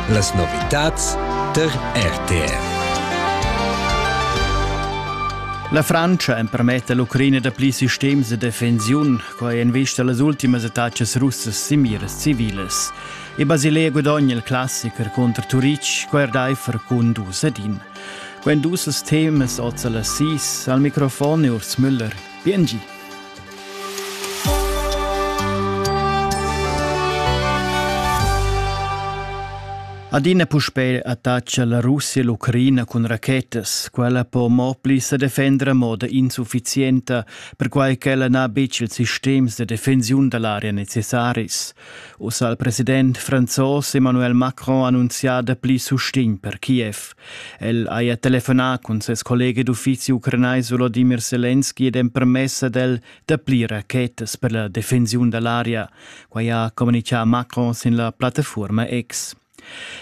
Las novitads tar RTR. La Francia empermetta l'Ucraina da pli sistems de defensiun, quai en vista las ultimas attacas russas sin miras civilas. E Basilea guadogna il classiker contro Turic, quai er daifer cun dus ad in. Quando dus temas oza la sis, al microfon è Urs Müller. Bien gi. Adina puspei attaccia la Russia l'Ucraina cun rachetas. Quella po mo pli se defender a moda insufficienta, perquai ch'ella n'ha betg ils sistems de defensiun da l'area necessaris. Ussa il president franzos Emmanuel Macron ha annunzià da pli sustegn per Kiev. El haja telefonà cun ses collega d'uffizi ucranais Volodimir Selenski ed empermess ad el dapli rachetas per la defensiun da l'aria. Quai ha communitgà Macron sin la plattafuorma X.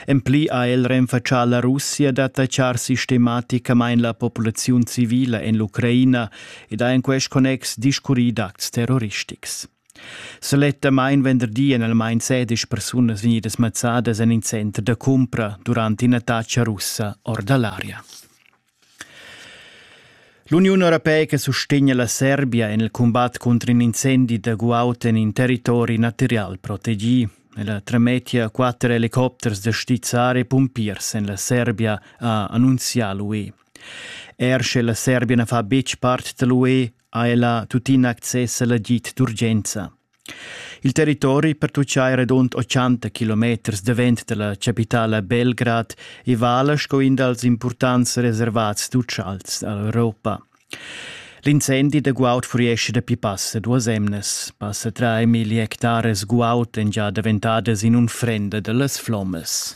En pli ha el renfatschà la Russia d'attachar sistematicamain la populaziun civila en l'Ucraina ed ha en quest connex discurrì d'acts terroristics. Sulettamain venderdi èn almain sedisch persunas vegnidas mazzadas en in center da cumpra durant ina tatscha russa or da l'aria. L'Uniun europeica sustegna la Serbia en il cumbat contro un incendi da guaud en in territori material protegì. Ella tremettia quatter helicopters da stizzar e pumpiers en la Serbia, ha annunzià l'UE. Er sche la Serbia na fa betg part da l'UE, ha ella tuttina access alla git d'urgenza. Il territori pertuccai redund 80 kilometers davent dalla capitala Belgrad e vala sco in dals importants reservats d'utschals dall'Europa. L'incendi da guaud furiesce da pi passa duas emnes. Passa tre milli hectares guaud en già daventadas in unfrenda dallas flommes.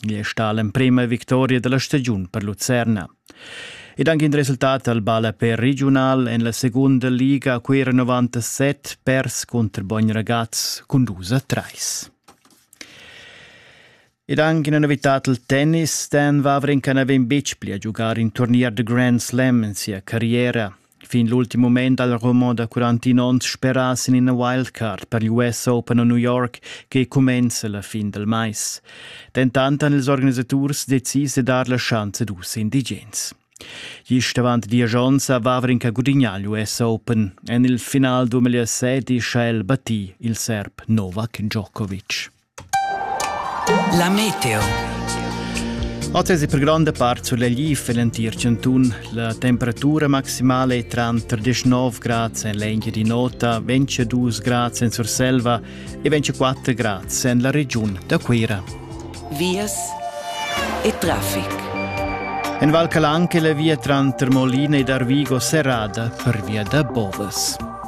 Gie sta l'emprema victoria dalla stagiun per Lucerna. Ed anche in resultat al ballapè regional en la seconda liga a Cuera 97 pers contro Bogn Ragaz con 2 a 3. Ed anche una novità il tennis, Dan Wawrinka n'aveva betg pli a giocare in turnier de Grand Slam in sia carriera. Fin l'ultim mument dal roman da 41 onns speras in ina wildcard per l'US Open a New York che cumenza la fin del mais. Dentant han ils organisaturs decis de dar la chance dus indigens. Gist avant dies onns aveva Rinca gudignà l'US Open. En il final 2007 ha el battì il serb Novak Djokovic. La meteo. Oz è per gronda part sulegliv l'entir chantun. La temperatura maximala è tranter 19 grad en l'Engiadin'Ota, 22 grad en Surselva e 24 grad en la regiun da Cuira. Vias e traffic. En Val Calanche la via tranter Molina ed Arvigo serrada per via da Bovas.